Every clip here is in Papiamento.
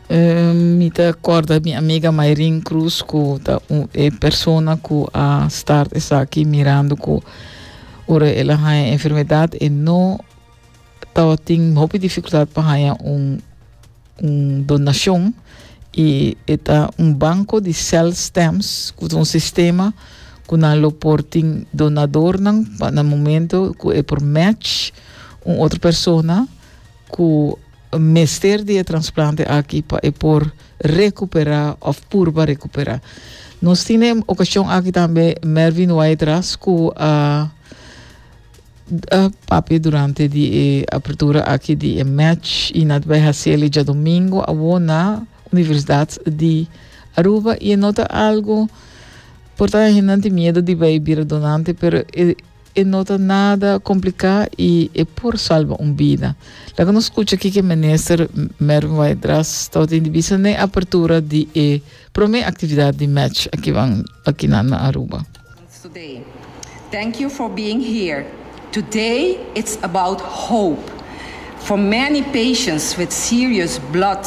Ehm, mi ta corda mi amiga Mayrin Cruz ku ta un e persona ku a start esaki mirando ku ora el a haya enfermedad e no tawa tin hopi dificultad pa haya un un donacion y eta un banco di cell stamps ku un sistema ku nan lo por tin donadornan pa na momento ku e por match un otro persona cu mester di e transplante aki pa e por recupera of purba recupera. Nos tin e ocasion aki tambe Mervin Waidras cu a a papia durante di e apertura aki di e match y na tabay haciel e djadomingo awo na Universidad di Aruba y e no ta algo por ta ahenanti miedo di bay bira donante pero e E no ta nada complicá y e por salba un bida. Laga nos scucha kiko e Minister Mervin Weidras tabatin di bisa n'e apertura di e prome actividad di match akiban akinan na Aruba. today. Thank you for being here. Today it's about hope for many patients with serious blood.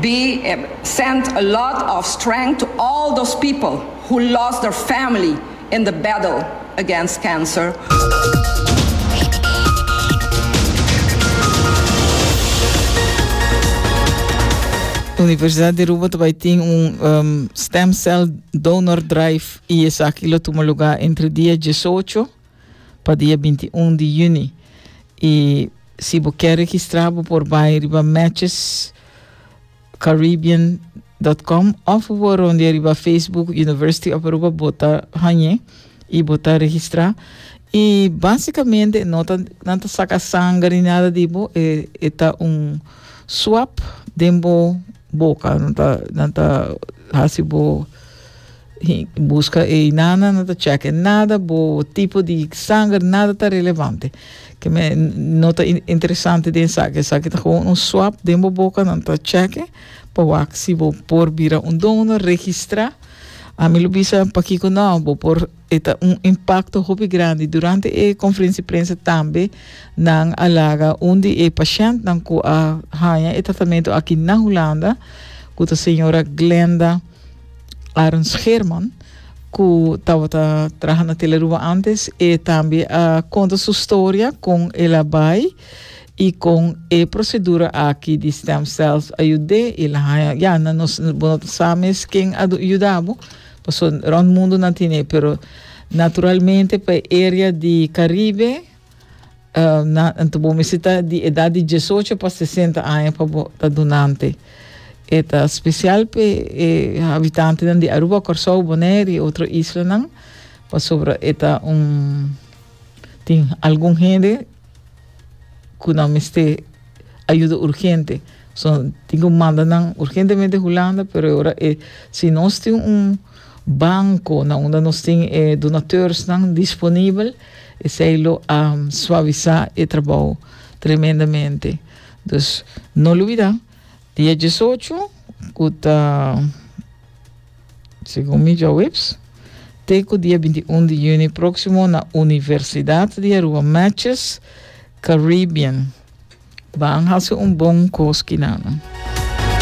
Be send a lot of strength to all those people who lost their family in the battle against cancer. Universidad di Aruba ta bai tin un um, stem cell donor drive y esaki lo tuma lugar entre dia diesocho pa dia binti un di yüni i si bo ke registrá bo por bai riba matchescaribbean.com of bo por rondia riba Facebook University of Aruba bo ta hañ'e i bo ta registrá i básikamente no ta nan ta saka sanger ni nada di bo e e ta un swab den bo boka nan ta nan ta hasi bo Buska ei nana no ta cheque nada bo tipo di sanger nada ta relevante ke me no ta interesante den esaki esaki ta gewoon un swap den bo boca nan ta cheque pa wak si bo por bira un donor registra ami lo bisa pakico no bo por e ta un impacto hopi grandi durante e conferenci prensa tambe nan a laga un di e pashent nan cu a haya e tratamento aki na Hulanda cu ta señora Glenda Aaron Scherman, cu tabata traha na Teleruba antes, e tambe a conta su storia con el a bay y con e procedura aki di stem cells a yud'é. El a haña, ya, na nos, bo no ta sa mes ken a yuda bo, pasobra rond mundo nan tin'é, pero naturalmente pa e area di Caribe, Uh, na, ento bo mesita di edad di diesocho pa sesenta aña pa bo ta dunante. Eta special pe e habitantenan di Aruba, Corsou, Bonaire y otro islanan, pasobra eta un tin algun hende cu nan meste ayuda urgente. So, tin cu manda nan urgentemente Hulanda, pero ora e, si nos tin un banco na unda nos tin e donateurs nan disponibel, Esei lo a suavisá e trabou tremendamente. Dus no lubidá, dia diesocho, ku ta segun mi djaweps, te ku dia binti un di yüni próksimo na Universidat di Aruba Matches Caribbean, ban hasi un bon kos kinan.